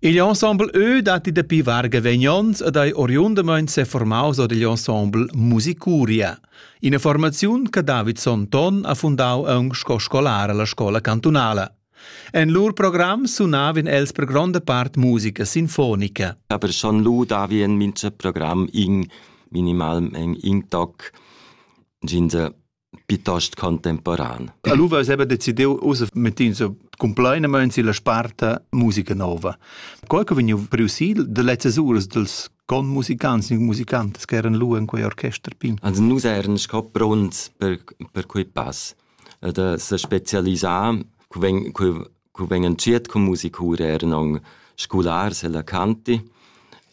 Igl ensembleeu datti dapi varga vegnons ed ei oriundamain seformaus od igl ensemble Musicuria, ina formaziun che David Sonton ha fundau aunc sco scolar alla scola cantunala. En lur program sunavin els per gronda part musica sinfonica. Aber schon lu davi en mincha program in minimalmeng in toc. Gin se piuttost contemporan. Allora aveva decidiu ussa mettins compleinamein silla sparta musica nova. Qual che vegniu priusil de lezzas uras dels con musicants e musicantes che eran lu in quei orchester pin. Also nus eran sco pronts per per quei pass da se specialisar, quei cu vegn entschiet cun musicur eran aunc scolars ella canti.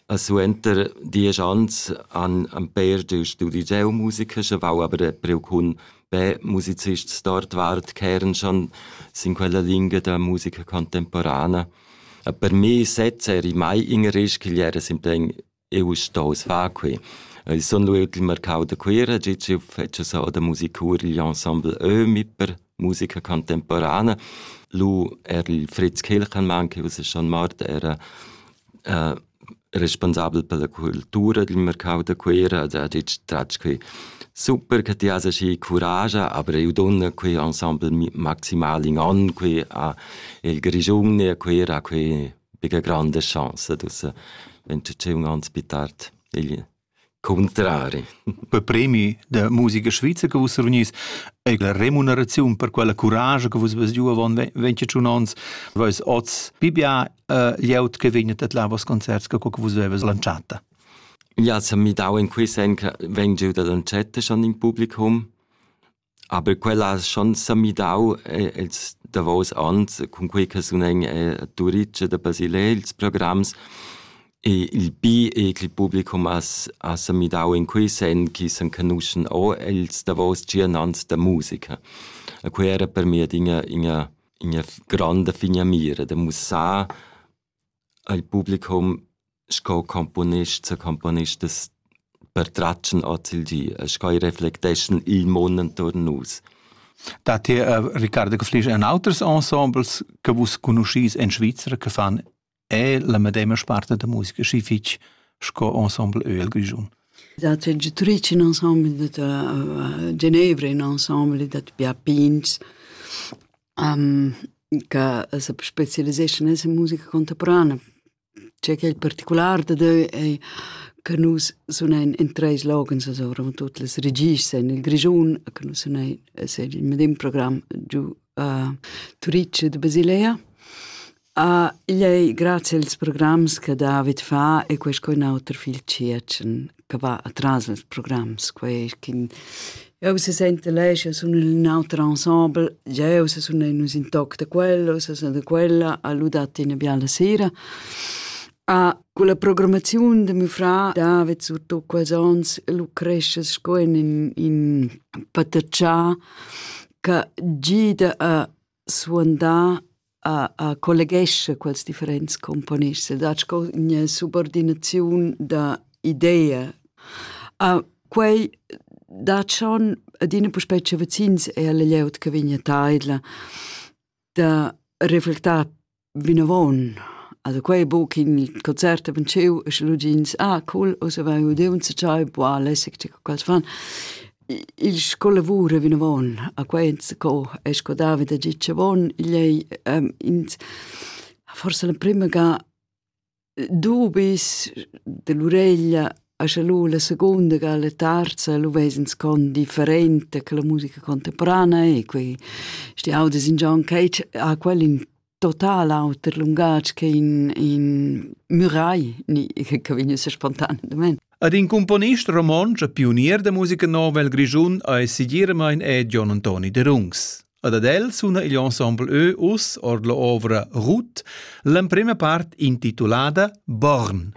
E suenter diesch anns han han pér giu studi geomusica, schevau aber preu cun be musicists d'ordvart ch'eran schon sin quella lingia da musica contemporana. E per mi sez eri mai in risch ch'igl era simplein Eu stoust far que. Eu sun lüt il marcau da Cuira, già ch'eu fetscha so da musicurgl ensemble Ömi per musica contemporana. Lu er il Fritz Kilchenmann, che ussa schon mort, era äh, responsabel per la cultura dil mercau da Cuira, ed ha ditg tratg qui super che ti has aschi curage, aber eu donna qui ensemble maximale in an qui a il Grigiun e a Cuira, a qui bigla granda chance d'ussa l'entutiun ans pli tard igl cuntrari. Per premi da musica svizza che vus reunís e la remuneraziun per quella curage che vus vas giu avon 21 ons, vois oz pibia uh, lieut che vegnet at la vos concerts che vus vevas lanciata. Ja, se mi dau in quei sen che veng giu da lancetta schon in publicum Aber quella ha schon semidau eh, ils davos onns, cunquei che sunen eh, a Turitg da Basilea ils programs e il bi e che il publicum ha, ha semidau in quei sen che s'enconuschen o ils davos tschien ans da musica. E quei era per me adina ina, ina grande figna mira da mussar Eil publicum sco componist secomponist es pertratg'n hoz il di e sco i reflecteschan il mun intuorn nus. Dad ir a Riccardo Caflisch en auters ensembles che vus conoschis en Svizra che fan è la medema sparte da musica schi fich sco ensemble Öl Grischun. Dat c'è Giutric in ensemble dat a Genevra in ensemble dat Pia Pins che se spezialiseschan nella musica contemporanea. Tgei ch'ei particular dadeu ei che nus sunein in treis loghens allura, mo tut las regists ein nel Grischun, che nus sunein es il medem program giu a Turitg ed a Basilea. Ah, igl ei grazie als programs che David fa e quei sco in auter fil tschiertschen che va atras als programs, quei ch'in jeu se sente lei, sche sun in auter ensemble, jeu se sun nus in toc da quello, se sun da quella, ha ludat ina biala sera. Ah, con la programmazione de mio frà David, surtutto quels ons, lu cresce sco in in, in pataccià che gida a suandà a, a colleghescha quels differents componists ed ha sco ina subordinaziun da idea. A quei da schon adina puspei che vecins è la glieud che vegna taidla da reflectar Vinavon, also quei buc in concert havein tscheu e sche lu gigns: Ah cool, ussa vai udiu enzatgei, buca lässig, tge quels fan. Il sco lavur a vinavon a quei enzaco è sco davida gitg avon, igl ei ins forsa l'emprema ga dubis dell'ureglia a scha lu la secunda ga la terza lu vesens con differente che la musica contemporanea e quei sti audis in John Cage ha quel in total auter lungatg che in in Murai ni che vegn sa spontan domen Ad in componist romontsch e pionier da musica nova el Grischun ei segiramain è Gion Antoni Derungs. Ad ad el suna igl ensemble Ö us ord la ovra Ruth l'emprema part intitulada Born.